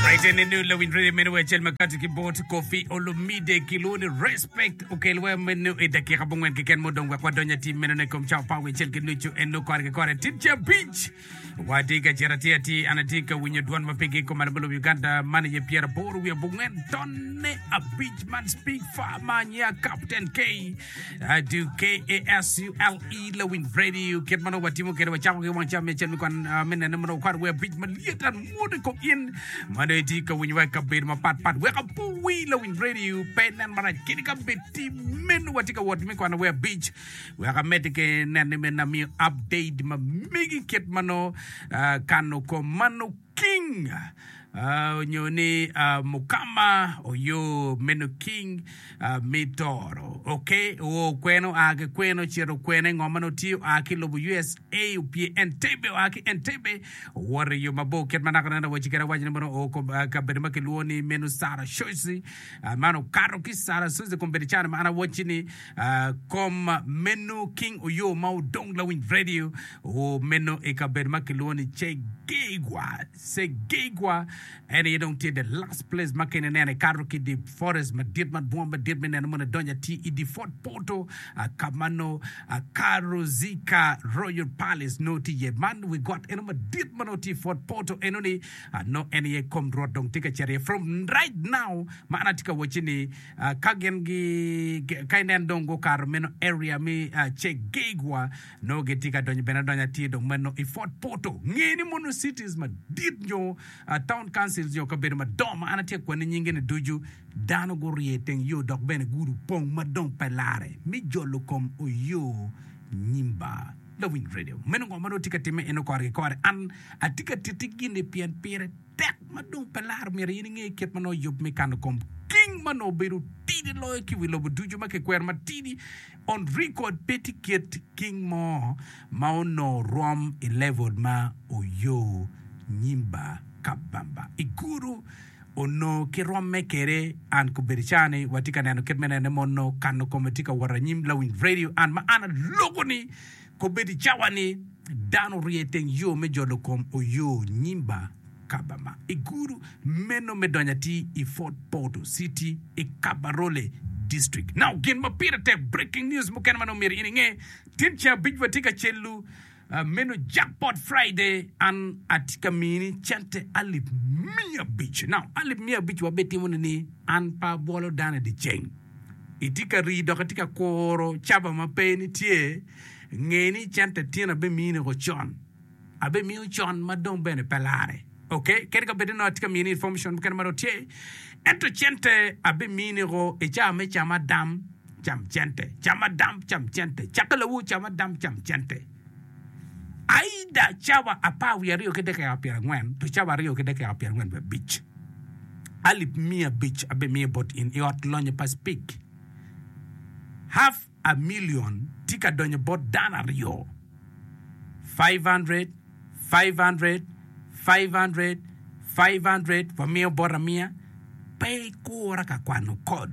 Raite ni nu lawiny radio meno wa acel makati ki bot kofi olumide ki lwoni respect okel wa meno i dakika bungwen keken mudong wek wadonyo atim meno ne kom cawa pawe acel ki nucu en nu kore ki kore tit ca abic wadi ka cito ati ati an ati ka winyo dwon ma pigi kom alamo lobo Uganda man aye pyera bor wiye bungwen tonne abic man speak far man ya Captain K I do KASULE Lawin Radio kit ma nongo watimo kede wacako ki wang cam me cen me kwan ah, me nene ma nongo kwar wer abic malyet an mwodo i kom in ma nongo itye ka winyo wa i kabedo mapat pat weka puwi Lawin Radio pe nen marac kede kabedo tim meno watye ka wot me kwan wer abic weka medde ke nene me namiyo update ma megi kit ma nongo ah, kano kom ma nongo King, onyo ni mukama oyo meno king me toro ok oo kwene oa ki kwene ocito kwene ngo ma nongo tye oa ki lobo usa opye Entebbe oa ki Entebbe owoto iyo mabor kit ma naka neno awaci kede awaci ni mono oo kom kabedo ma kilwongo ni meno Sarashozi man okato ki Sarashozi kombedo cani ma an awaci ni Kom meno King Oyoo ma odong lawiny radio meno i kabedo ma kilwongo ni Cegeigwa. Cegeigwa en aye dong tye the last place ma kene ineno ikato ki the forest madit ma bunga madit me neno mono idonyo ati i the Fort Portal ka ma no Karozika Royal Palace no tye iye. Man wi got eno madit ma no tye i Fort Portal eno ni no en aye kom rwot dong tye ka cito iye from right now ma an atye ka wacci ni Ka gin gi ka inen dong gukato meno area me Chegeigwa nongo gitye ka donyo bene adonya tye dong meno i Fort Portal. Nge ni mono cities madit nyo town councils nyo kabedo madongo ma an atye ka kwanni nyingi ni ducu dano gurye i teng yo dok bene gudi opong ma dong pe larre me jolo kom oyo nyimba. Lawiny Radio. Meno ngo ma nongo tye ka timme eno kore ki kore an atye ka titi gini pien pire. Tek ma dong pe laro myero in inge kit ma nongo oyub me kano kom king ma nongo obedo tidi loyo ki i wi lobo ducu ma kikwero matidi on record. Pe tye kit king mo ma onongo rom i level ma Oyo Nyimba Kabamba i Guru onongo ki romme kwede. An kobedi ca ni watye ka neno kit me nene mono kano kome tye ka wot anyim Lawiny Radio an ma an aloko ni Kobedo i cawa ni dano orye i teng yo me jolo kom oyo Nyimba Kabama i gudu meno me donyo atir i Fort Portal City i Kabarole District. Now gin ma pire tek breaking news mukene ma nongo myero in inge, tin ceng abic watye ka celu meno Jackpot Friday an atye ka mini cente alip miya abic. Now alip miya abic wa bene timone ni an pe abwolo dano i dyeceng. Itye ka rii dok itye ka kuro caba ma pe nitye, nge ni cente ityen abe miyone woko con, abe miyo con ma dong bene pe lare ok kadi ka bed ni atye ka miyone information mukene ma dong tye ento cente abe miyone woko i caa me camadam cam cente, camadam cam cente, cakki lawu camadam cam cente. Aida cawa apar wiye aryo ki dakika pyerangwen to cawa aryo ki dakika pyerangwen wiye abic, alip miya abic abimiyo bot in i ot lonyo pa Speke. Half a million tye ka donyo bot dano aryo. Five hundred, five hundred, five hundred, five hundred, wamiyo bot amiya. Pe ikura ka kwano kod.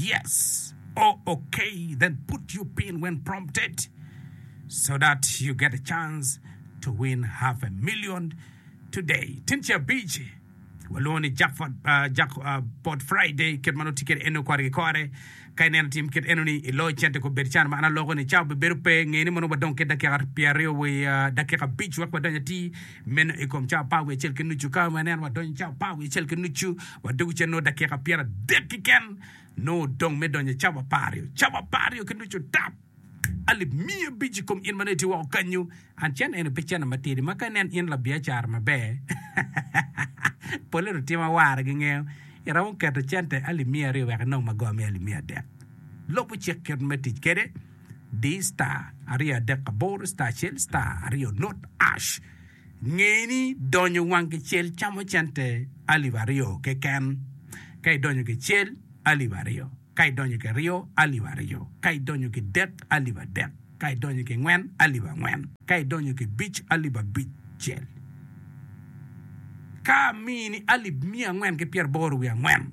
Yes, oh okay, then put your pin when prompted so that you get a chance to win half a million today. Tin ce abic walwongo ni jackpot, uh, jackpot Friday kit ma nongo tye kwede eno kore ki kore. Ka ineno tim kit eno ni iloyo cente ko bed can ma an aloko ni ca obebedo pe ngeni mono wadong ki dakika pyeraryo wa uh, dakika abic wek wadony atir Meno i kom cawa apar wiye acel ki nucu. Ka waneno wadonyo i cawa apar wiye acel ki nucu, wadwogo ica nongo dakika pyeradek keken, nongo odong me donyo i cawa apar aryo. Cawa apar aryo ki nucu tap, alip miya abic i kom in ma nongo itye woko kenyu. And cene eni pe cene matidi ma ka inen in labiacara maber, polle lutimo awara gingeyo, iromo keto cente alip miya aryo wek inong magor me alip miya adek. Lubo cik kit me tic kwede. di star aryo adek aboro star acel star aryo nut ash nge ni donyo wang gicel camo cente alip aryo keken ka idonyo gicel alip aryo ka idonyo kiryo alip aryo ka idonyo kidek alip adek ka idonyo kingwen alip angwen ka idonyo kibic alip abicel ka mini alip miya angwen ki pyeraboro wiye angwen.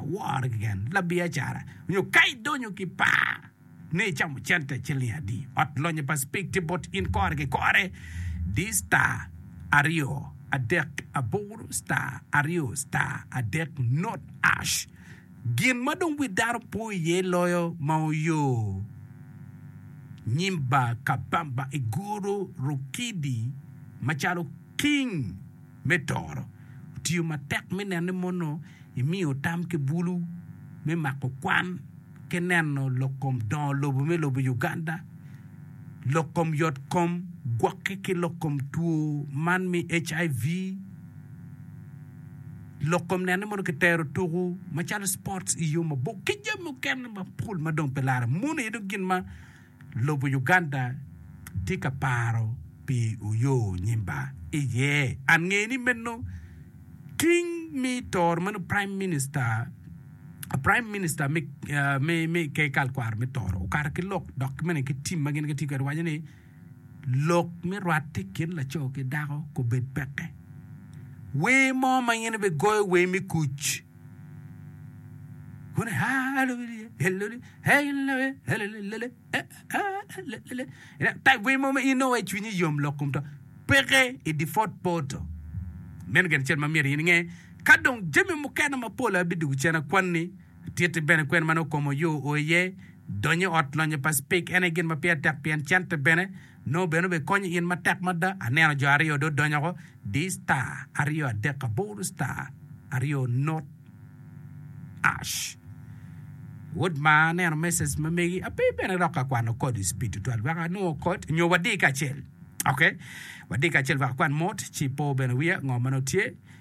woro keken labiacara nyo ka idonyo ki par ni icamo cente ciling adi. Ot lonyo pa Spectrum bot in kore ki kore di star aryo adek aboro star aryo star adek not ash. Gin ma dong wi dano po iye loyo ma oyo nyim bar Kabamba i guru Rukidi macalo king. Me toro, otiyo matek me neno ni mono imiyo tam ki bulu me mako kwan ki neno lok kom dongo lobo me lobo Uganda, lok kom yot kom gwoki ki lok kom two man me HIV, lok kom neno ni mono ki tero tuku macalo sports iyo mabor ki jami mukene mapol madong pe lare. Mono aye dong gin ma. Lobo Uganda tye ka paro pi Oyo Nyimba iye. An ngeyo ni meno ting mi toro meno Prime Minister Prime Minister me ker kal kwaro me toro okato ki lok dok ki mene ki tim ma gin gitye kwede waco ni lok me rwate i kin laco ki dako kobed peke. Wer mo ma in ibe goyo wer me kuc. Kun ha lubili he luli he lule he lule lule he ha lule lule. Ina tai gwe mo ma in owe cwinyi yom lok kum to peke i default photo. Meno gen cel ma myero in inge ka dong jami mukene mapol abidugo cen akwanni titi bene kwen ma nongo komo yo o iye donyo ot lonyo pa speak ene gin ma pire tek pien cente bene Nongo bene obikonyo in matek mada. Aneno jo aryo dong donyo woko, di star aryo adek aboro star aryo not ash. Wod maa aneno message ma megi ape bene lok ka kwano code is speed tutwal wek anongo code nyo wadi kacel. Okay. Wadi kacel wek akwan mot ci po bene wiya ngo ma nongo tye.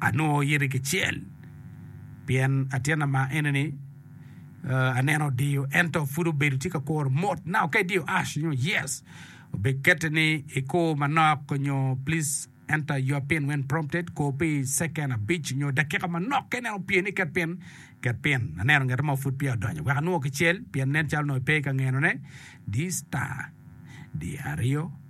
anongo yiti kicel pien atyena ma enini aneno odiyo ento pud obedo tye ka kuro mot na oke idiyo ash nyo yes obikete ni ikur manok nyo please enter your pin when prompted kur pi second abic nyo dakika manok ka ineno opye ni ket pin ket pin aneno ngete mo pud peya odonyo wek anongo kicel pien nen calo nongo ipe ka ngenone di star di aryo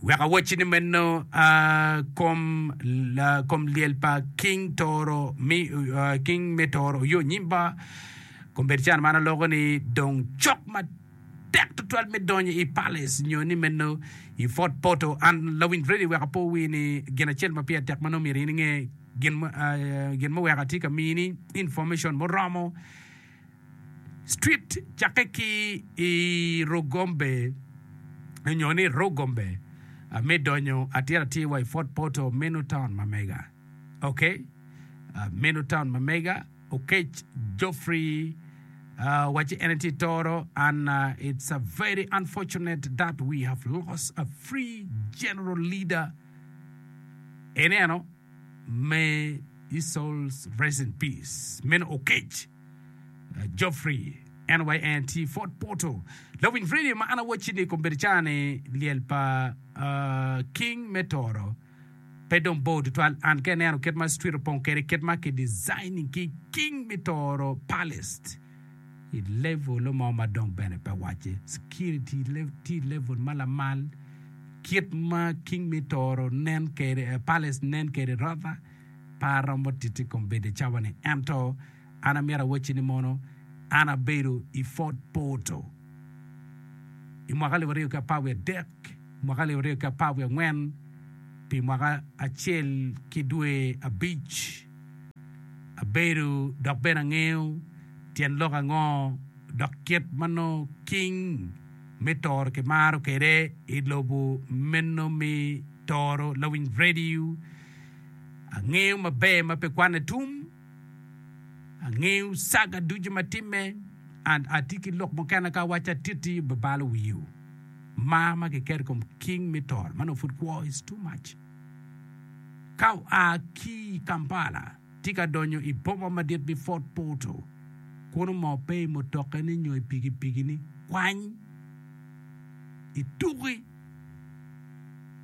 Wek awacci ni meno, kom, kom lyel pa King Toro, King me Toro oyo nyim ba. Kombedicen man aloko ni dong cok matek tutwal me donyo i Palace nyo ni meno i Fort Portal. An Lawiny Freddy wek apo wi ni gin acel ma pire tek ma nongo myero in inge, gin, gin ma wek atye ka mini information muromo, Street cakke ki i Rugombe nyo ni Rugombe me donyo atir atir wa i Fort Portal meno taun ma mega. Ok, meno taun ma mega. Okec Geoffrey wacci en tye toro and it's a very unfortunate that we have lost a free general leader. Ineno? May His soul rest in peace. Meno Oketch Geoffrey NYANT Fort Portal. Lawiny radio ma an awacci ni kombeddi ca ni lyel pa uh, king me toro pe dong bor tutwal an ka ineno kit ma street opong kwede kit ma ki designing ki king me toro palace i level mo ma dong bene pe wacce security tye i level ma lamal kit ma king me toro nen kede eh, palace nen kede rotha pa romo titi kom bede cawa ni ento an amira wacci ni mono an abedo i fort porto i mwaka alip aryo ki apar wiye adek mwaka alip aryo ki apar wiye angwen pi mwaka acel ki dwe abic abedo dok bene angeyo tyen lok ango dok kit ma nongo king me toro kimaro kwede i lobo meno me toro lawiny radio. Angeyo maber ma pe kwane tum, angeyo saga ducu ma timme and atye ki lok mukene ka awaco atiti bibalo wiyo. Mar ma kiketo i kom king me toro ma nongo pud kwo is too much. Ka oa ki i Kampala, tye ka donyo i boma madit me Fort Portal. Kun omor pe i mutokane nyo i pikipikine, kwany i tuki,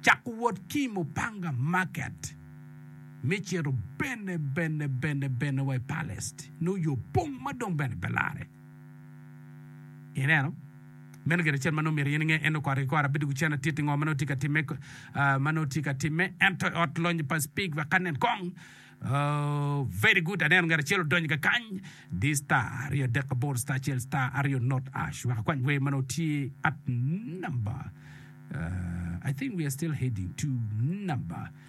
cako wot ki i Mupanga Market me cito bene bene bene bene wa i Palest, nongo yo pong ma dong bene pe larre. Ineno? Meno gin acel ma nongo myero in inge. En okoro ki kore abedo wi cen atit i ngo ma nongo tye ka timme, ma nongo tye ka timme. Ento i ot lonyo pa Speke wek anen kong. Ooh, very good, aneno ngat acel odonyo ka kany. Di star aryo adek aboro star acel star aryo not ash wek akwany wer ma nongo tye at number, I think we are still heading to number.